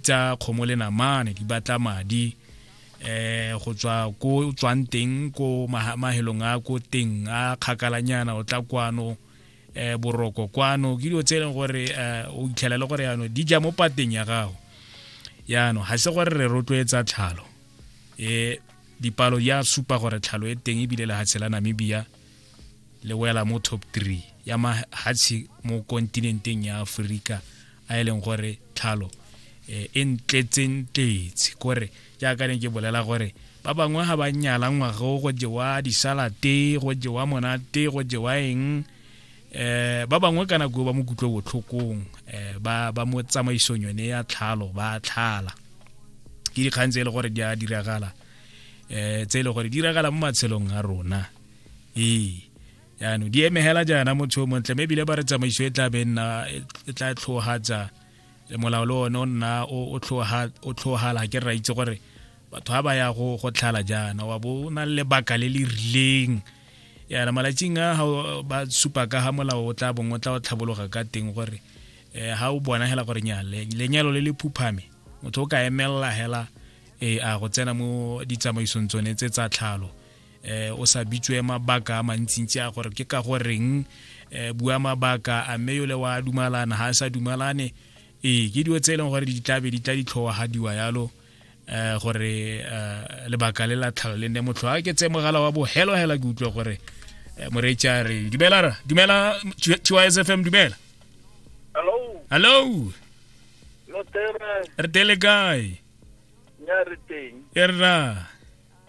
tsa kgomo le namane di batla madi eh go tswa ko tswang teng ko mahelong a ko teng a kgakalanyana o tla kwano eh boroko kwano ke dilo tse e leng gore eh, o itlhela le gore yano di ja mo pateng ya gago yano ga se gore re rotloetsa tlhalo eh dipalo ya supa gore tlhalo e teng ebile lehatshe la namibia le wela mo top 3 ya mahatshe mo kontinenteng ya aforika a e leng gore tlhalo eh, e ntletseng tletse kore jaaka ne ke bolela gore ba bangwe ga ba nyala ngwago go jewa disalate go jewa monate go jewa eng eh ba bangwe ka nako ba mo kutlwe botlhokong eh ba ba mo tsamaisong yone ya tlhalo ba tlhala ke dikgang tse e le gore di a diragala eh tse e le gore di diragala mo matshelong a rona ee yaanong di emegela jaana motho o montle mme ebile ba re tsamaiso e tla be nna e tla tlhogatsa molao le one o nna o tlhogala ke ra itse gore batho ga ba ya go go tlhala jaana wa bo o na le lebaka le le rileng yana malatsing a ba supa ka ga molao o tla bong o tla o tlhabologa ka teng gore um ga o bona hela gore nya lenyalo le le phuphame motho o ka emelela hela um a go tsena mo ditsamaisong tsone tse tsa tlhalo eh o sa bitswe mabaka a mantsintsi a gore ke ka go reng eh bua mabaka a mme yole wa dumalana ha sa dumalane ee ke dilo tse e leng gore di tlabe di tla ditlhowagadiwa yalo eh gore eh, lebaka le la tlhalo le nne motlho a ke tse mogala wa bo helo hela ke utlwe gore eh, moreetsi a re dumela ra dumela tysfm dumela hello hello lo tere re tele kae nya re teng e rra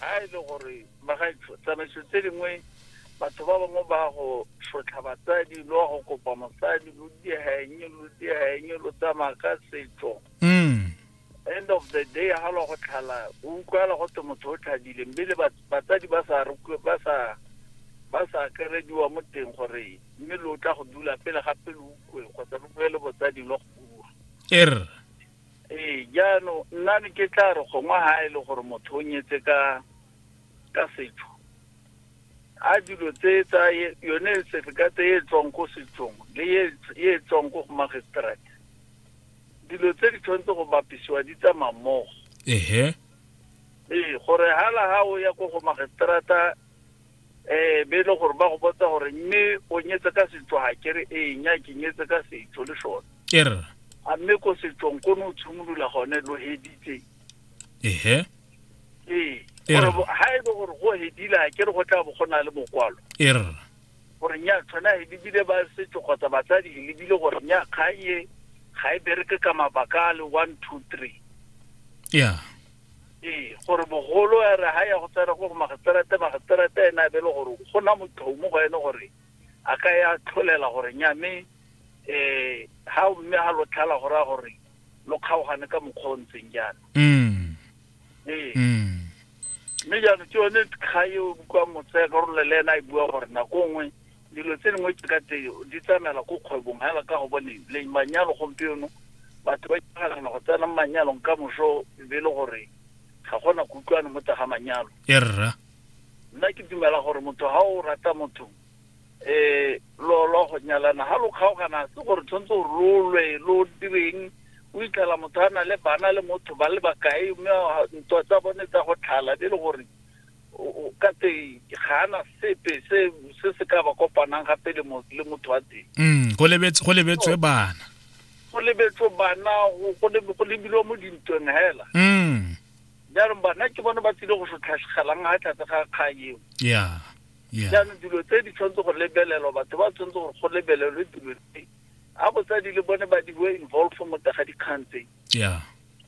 ga e le gore magaetsho tsamaiso tse dingwe batho ba bangwe ba go sotlha batsadi lo wa go kopa mosadi lo diegeng lo diegeng lo tsamaya ka setso mm. end of the day ga lo go tlhala o utlwala go te motho o tlhadile mme le batsadi ba sa ba sa ba sa kerediwa mo teng gore mme lo tla go dula pele gape lo ukwe kgotsa lo boele botsading lo go bua er ee jaanong nna ne ke tla re gongwe ga e le gore motho o nyetse ka ka setso a dilo tse tsa yone certificate e tswang ko setsong le e tswang ko go magistrate dilo tse di tshwanetse go bapisiwa di tsamaya mmogo ehe ee gore hala ha o ya ko go magistrata um be e le gore ba go botsa gore mme o nyetse ka setso ga kere ee nya ke nyetse ka setso le sone er a mme ko setsong ko ne o tshimolola gone lo heditse ehe ee Ee. gore bo- ha e le gore go hedile ga kere go tla bo go na le mokwalo er gore nya tshwana e lebile ba setso kgotsa batsadi e lebile gore nya kgang e ga e bereke ka mabaka a le one two three ya ee gore mogolo a re ga ya go tsena gore magistrate magistrate ene a be le gore go na motho mo go ene gore a ka ya tlholela gore nya mme um ga mme ga lo tlhala go raya gore lo kgaogane ka mokgwa o ntseng jaana mm. ee mm. mme jaanong ke yone kga e o bukwang motsaya karolo le ena e bua gore nako nngwe Dilo tse dingwe tse ka teng di tsamaela ko kgwebong hela ka go boneng le manyalo gompieno batho ba itlhaganela go tsena mo manyalong ka moso e be e le gore ga gona kutlwane mo tsa ga manyalo e rra nna ke dumela gore motho ga o rata motho um lo lo go nyalana ga lo kgaogana se gore tshwanetse gore lo lwe lo direng o itlhela motho a na le bana le motho ba le bakae mme ntwa tsa bone tsa go tlhala be e le gore ka teng ga ana sepe se se se ka ba kopanang gape le motho wa teng mm, go lebetswe bana go lebetswe bana go lebilwe mo dintweng hela mm. jaanong bana ke bone ba tsile go sotlhatlhelang ga tlhatse ga kgang eo jaanong dilo tse di tshwanetse go lebelelwa batho ba tshwanetse gore go lebelelwe dilo tse a botsadi le bone ba di bo involve mo tega dikgang tse